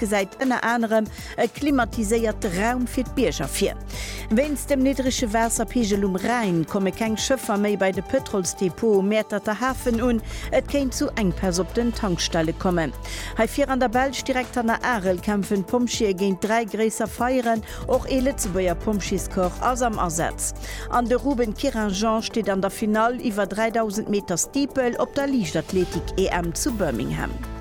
gesäit ënner anerem e klimatiséierte Raum fir d'Bierger vir. Wéinst dem niddrege Waasserpigel um Rhäin komme keng Schëffer méi bei de Pëtrolsdepot um Mäerterter Hafen un. Et kéint zu Enkpäss op den Tankstelle kommen. Hei vir an der Belsch, direkt hanner Arel, kämpfen d'Pompjeeë géint dräi gréisser Feieren. Och ee Lëtzebuerger Pompjeescorps ass am Asaz. An de Ruben Querinjean steet an der Finall iwwer 3000 Meter Steeple op der Liichtathletik-EM zu Birmingham.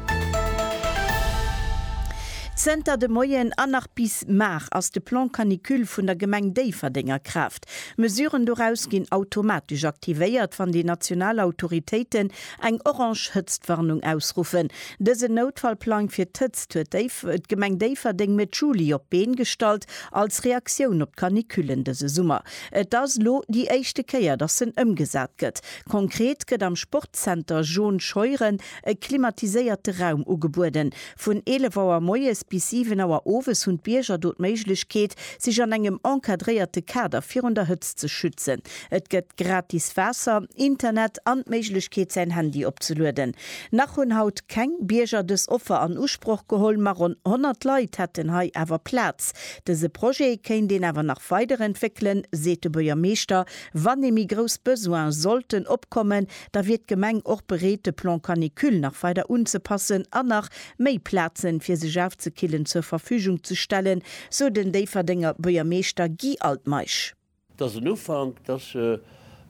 Zënter de Moien an nach bis mar ass de Plan Canicule vun der Gemeng Déifferdeng a Kraaft. Mesuren doraus ginn automatesch aktivéiert, wann déi national Autoritéiten eng orange Hëtztwarnung ausruffen. Dësen Noutfallplang fir d'Hëtzt huet d'Gemeng Déifferdeng Mëtt Juli op d'Been gestallt, als Reaktioun op d'Canicullen dëse Summer. Et ass lo déi éischte Kéier, dass en ëmgesat gëtt. Konkret gëtt am Sportzenter Jaune Scheuren e klimatiséierte Raum ugebueden. Vun 11 Auer moies bis 7 Auer owes hunn d'Bierger do d'Méiglechkeet, sech an engem encadréierte Kader virun der Hëtzt ze schützen. Et gëtt gratis Waasser, Internet an d'Méiglechkeet, säin Handy opzelueden. Nach hunn haut keng Bierger dës Offer an Usproch geholl, ma ronn 100 Leit hätten hei awer Plaz. Dëse Projet kéint een awer nach weiderentwéckelen, seet de Buergermeeschter, wann ee méi grouss Besoine sollten opkommen, da wier d'Gemeng och bereet de Plan Canicule nach weider unzepassen an nach méi Plazen fir sech aufzekillen zur Verfügung ze stellen, sou den Déifferdenger Buergermeeschter Guy Altmeisch. Et ass en Ufank, et ass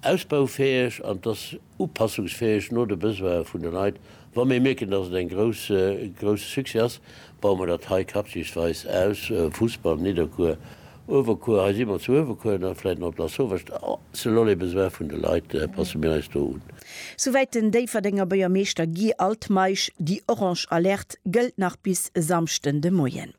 ausbaufäeg an et ass upassungsfäeg no de Besoine vun de Leit Wa mir mierken, dass et en grousse Succès ass, baue mer dat hei quartiersweis aus, Fussball, Nidderkuer, Uewerkuer, hei si mer zu Uewerkuer an da vläit nach op Lasauvage, selon les besoins vun de Leit passe mir eis do un. Souwäit den Déifferdenger Buergermeeschter Guy Altmeisch. Déi orange Alerte gëllt nach bis Samschden de Moien.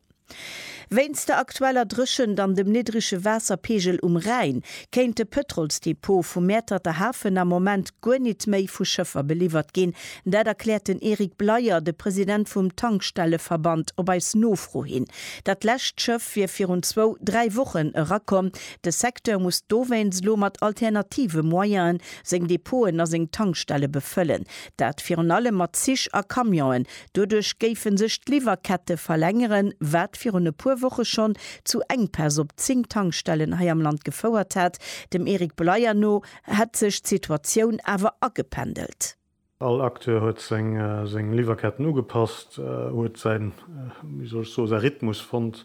Wéinst der aktueller Dréchent an dem niddrege Waasserpeegel um Rhäin kéint de Pëtrolsdepot vum Mäerterter Hafen am Moment guer nit méi vu Schëffer beliwwert ginn. Dat erkläert den Eric Bleyer, de President vum Tankstelleverband, op eis Nofro hin. Dat lescht Schëff wier virun zwou, dräi Wochen erakomm. De Secteur muss dowéinst elo mat alternative Moyene seng Depoten a seng Tankstelle befëllen. Dat virun allem mat Zich a Camionen, Doduerch géife sech d'Liwwerkette verlängeren, wat virun e puer Woche schonn zu Enkpäss op 10 Tankstellen hei am Land gefouert hat. Dem Eric Bleier no hätt sech d'Situatioun awer agependelt. All Acteur huet seng Liwwerketten ugepasst, huet säin, wéi soll ech soen, säi Rhythmus fonnt.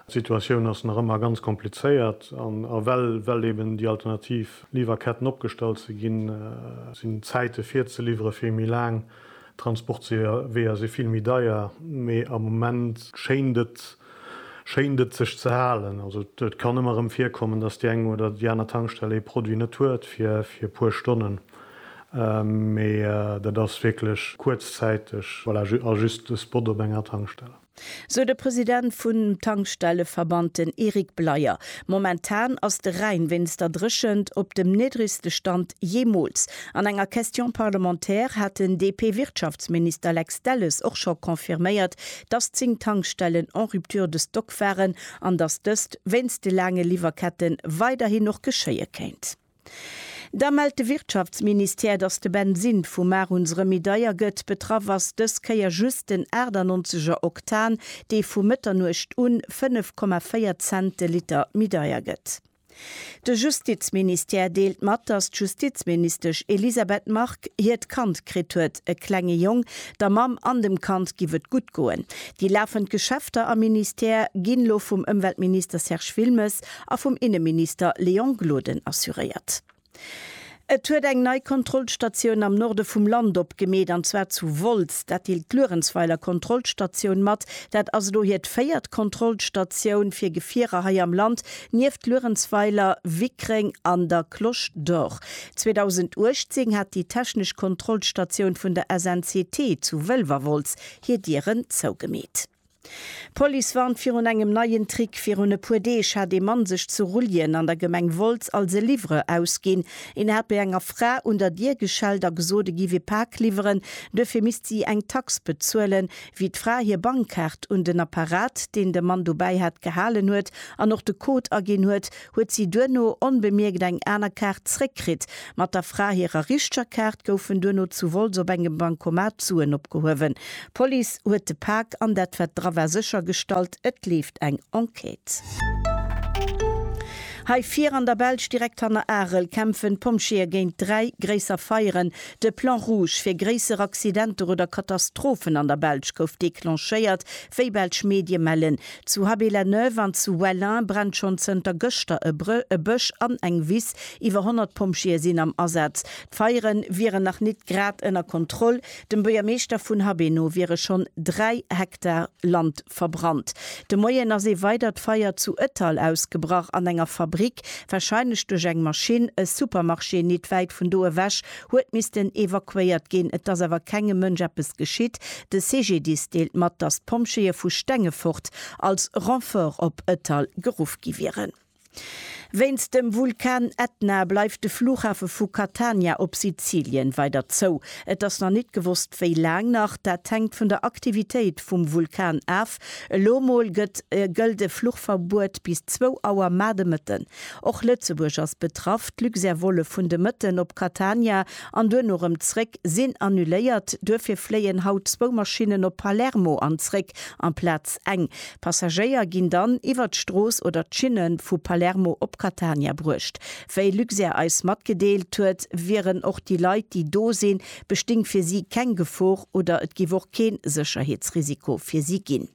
D'Situatioun ass nach ëmmer ganz komplizéiert an well eben déi alternativ Liwwerketten opgestallt si ginn, sinn d'Zäite fir ze liwwere vill méi laang. D'Transportweeër si vill méi deier, mee am Moment schéint et, schéint et sech ze halen. Also et kann ëmmer erëm virkommen, dass déi eng oder déi aner Tankstell ee Produit net huet fir e puer Stonnen, mee dat ass wierklech kuerzzäiteg, voilà, a just e Spot op enger Tankstell. sou de President vun Tankstelleverband, den Eric Bleyer. Momentan ass de Rhäin wéinst der Dréchent op dem niddregste Stand jeemools. An enger Question parlementaire hat den DP-Wirtschaftsminister Lex Delles och scho confirméiert, dass 10 Tankstellen en rupture de stock waren an dass dëst wéinst de laange Liwwerkette weiderhin och geschéie kéint. Da mellt de Wirtschaftsministère, datt de Bensin vum Mar uns rëm méi deier gëtt. Betraff ass dës Kéier just den 98 er Oktan, dee vu Mëtternuecht un 5,4 Cent de Liter méi deier gëtt. De Justizministère deelt mat, datt d'Justizministesch Elisabeth Margue hiert Kand kritt huet, e klenge Jong. Der Mamm an dem Kand giff et gutt goen. Déi lafend Geschäfter am Ministère ginn elo vum Ëmweltminister Serge Wilmes a vum Inneminister Léon Gloden assuréiert. Et huet eng nei Kontrollstatioun am Norde vum Land opgemeet, an zwar zu Wolz. Dat deelt d'Luerenzweiler Kontrollstatioun mat. Dat ass elo hiert véiert Kontrollstatioun fir Gefierer hei am Land, nieft Luerenzweiler, Wickreng an der Cloche d'Or. 2018 hat déi technesch Kontrollstatioun vun der SNCT zu Wëlwerwolz hir Dieren zougemeet. D'Police warnt virun engem neien Trick. Virun e puer Deeg hat ee Mann sech zu Rulljen an der Gemeng Wolz als e Livreur ausginn. Een hat bei enger Fra un der Dier geschellt a gesot, e giff ee Pak liwweren, duerfir misst si eng Tax bezuelen. Wéi d'Fra hir Bankkaart un den Apparat, deen de Mann dobäi hat, gehalen huet an och de Code aginn huet, huet si duerno onbemierkt eng aner Kaart zréckkritt. Mat der Fra hirer richteger Kaart goufen duerno zu Wolz op engem Bancomat Suen opgehuewen. D'Police huet de Pak an dat wat dra war séchergestallt. Et leeft eng Enquête. Hei vir an der Belsch, direkt hanner Arel, kämpfen d'Pompjeeë géint dräi gréisser Feieren. De Plan rouge fir gréisser Accidenter oder Katastrophen an der Belsch gouf declenchéiert, wéi belsch Medie mellen. Zu Haby-la-Neuve an zu Wellin brennt schonn zënter gëschter e Bësch an eng Wiss. Iwwer 100 Pompjeeë sinn am Asaz. D'Feiere wieren nach nit grad ënner Kontroll. Dem Buergermeeschter vun Habé no wiere schonn 3 Hektar Land verbrannt. De Moien ass ee weidert Feier zu Ettal ausgebrach an enger Fabrick. Warscheinlech duerch eng Maschinn. E Supermarché nit wäit vun do ewech huet missten evakuéiert ginn. Et ass awer kengem Mënsch eppes geschitt. De CGDIS deelt mat, datt d'Pompjeeë vu Stengefort als Renfort op Ëttal geruff gi wieren. Wéinst dem Vulkan Etna bleift de Flughafe vu Catania op Sizilien weider zou. Et ass nach net gewosst, wéi laang nach. Dat hänkt vun der Aktivitéit vum Vulkan af. Elo mol gëtt gëllt e Fluchverbuet bis zwou Auer mar de Mëtten. Och Lëtzebuerg ass betraff. D'Luxair-Volle vun de Mëtten op Catania an duerno erëm zréck sinn annuléiert. Duerfir fléien haut zwou Maschinnen op Palermo an zréck amplaz eng. Passagéier ginn dann iwwer d'Strooss oder d'Schinne vu Palermo op Catania bruecht. Wéi Luxair eis matgedeelt huet, wieren och déi Leit, déi do sinn, besting fir si keng Gefor oder et giff och keen Sécherheetsrisiko fir si gin.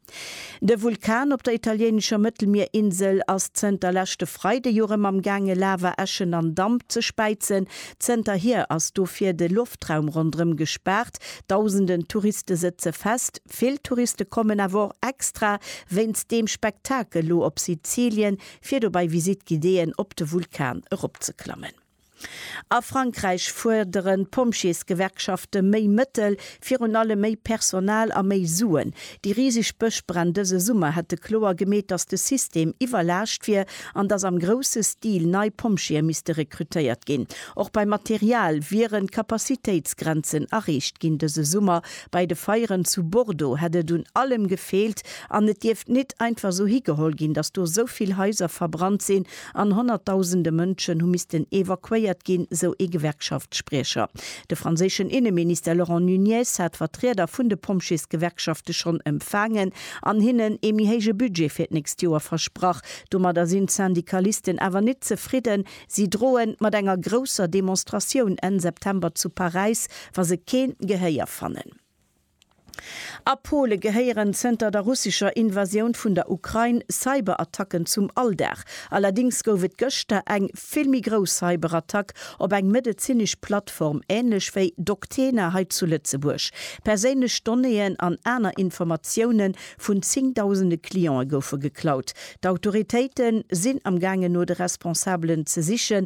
De Vulkan op der italiéinescher Mëttelmierinsel ass zënter leschte Freide jo rem am gaange Lava, Äschen an Damp ze späizen. Zënter hier ass dofir de Loftraum rondrem gespaart. Dausenden Touriste sëtze fest. Vill Touriste kommen awer och extra wéinst deem Spektakel lo op Sizilien fir do bei Visite guidéeën op de Vulkan eropzeklammen. A Frankräich fuerderen d'Pompjeesgewerkschafte méi Mëttel, virun allem méi Personal a méi Suen. Déi riseg Bëschbränn dëse Summer hätte kloer gemeet, datt de System iwwerlaascht wier an datt am grousse Stil nei Pompjeeë misste rekrutéiert ginn. Och beim Material wieren d'Capacitéitsgrenzen erreecht ginn. Dëse Summer bei de Feieren zu Bordeaux hätt et un allem gefeelt an et dierft nit einfach esou higeholl ginn, datt do esou vill Haiser verbrannt sinn an honnertdausende Mënschen hu missten evakuéiert ginn, sou ee Gewerkschaftsspriecher. De franséischen Inneminister Laurent Nunez hat Vertrieder vun de Pompjeesgewerkschafte schonn empfaangen an hinnen ee méi héije Budget fir d'nächst Joer versprach. Domadder sinn d'Syndikalisten awer net zefridden. Si droen mat enger grousser Demonstratioun Enn September zu Paräis, wa se keen Gehéier fannen. A Pole gehéieren zënter der russescher Invasioun vun der Ukrain Cyberattacken zum Alldag. Allerdéngs gouf et gëschter eng vill méi grouss Cyberattack op eng medezinesch Plattform, änlech wéi Doctena hei zu Lëtzebuerg. Perséinlech Donnéeën an aner Informatioune vun zéngdausende Cliente goufe geklaut. D'Autoritéite sinn am gaangen no de Responsabelen ze sichen,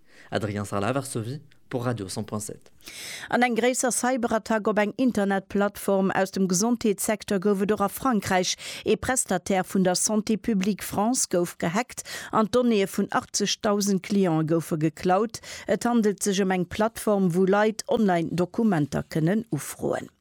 Adrien Sarlat, Varsovie, pour Radio 100.7. An eng gréisser Cyberattack op eng Internetplattform aus dem Gesondheetssecteur gouf et och a Frankräich. Ee Prestataire vun der Santé Publique France gouf gehackt an d'Donnéeë vun 80.000 Clientë goufe geklaut. Et handelt sech ëm eng Plattform, wou Leit online Dokumenter kënnen ufroen.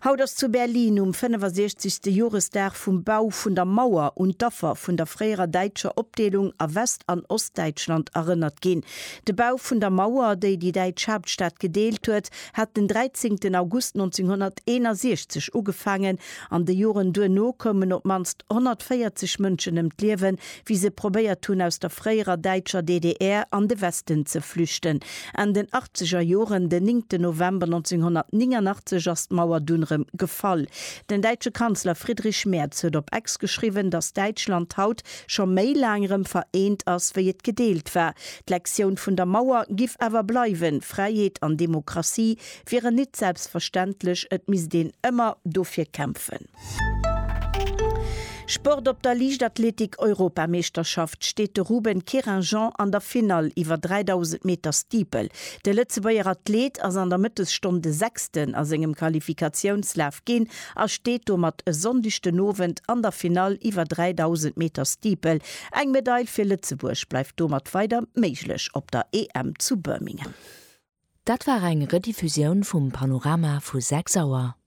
Haut ass zu Berlin um 65. Joresdag vum Bau vun der Mauer un d'Affer vun der fréierer däitscher Opdeelung a West an Ostdäitschland erënnert ginn. De Bau vun der Mauer, déi déi däitsch Haaptstad gedeelt huet, hat den 13 August 1961 ugefaangen. An de Joren duerno koumen op d'mannst 140 Mënschen ëm d'Liewen, wéi se probéiert hunn aus der fréierer däitscher DDR an de Westen ze flüchten. Enn den achtzeger Joren, den néngten November 1989, ass d'Mauer dunn erëm gefall. Den däitsche Kanzler Friedrich Merz huet op Ex geschriwwen, datt Däitschland haut scho méi laang erëm vereent ass, wéi et gedeelt war. D'Lektioun vun der Mauer giff awer bleiwen, Fräiheet an Demokratie wieren nit selbstverständlech, et misst een ëmmer dofir kämpfen. Sport Op der Liichtathletik-Europameeschterschaft steet de Ruben Querinjean an der Finall iwwer 3.000 Meter Steeple. De Lëtzebuerger Athleet ass an der Mëttesstonn de Sechsten a sengem Qualifikatiounslaf ginn a steet domat e Sonndeg den Owend an der Finall iwwer 3.000 Meter Steeple. Eng Medail fir Lëtzebuerg bleift domat weider méiglech op der EM zu Birmingham. Dat war eng Rediffusioun vum Panorama vu 6 Auer.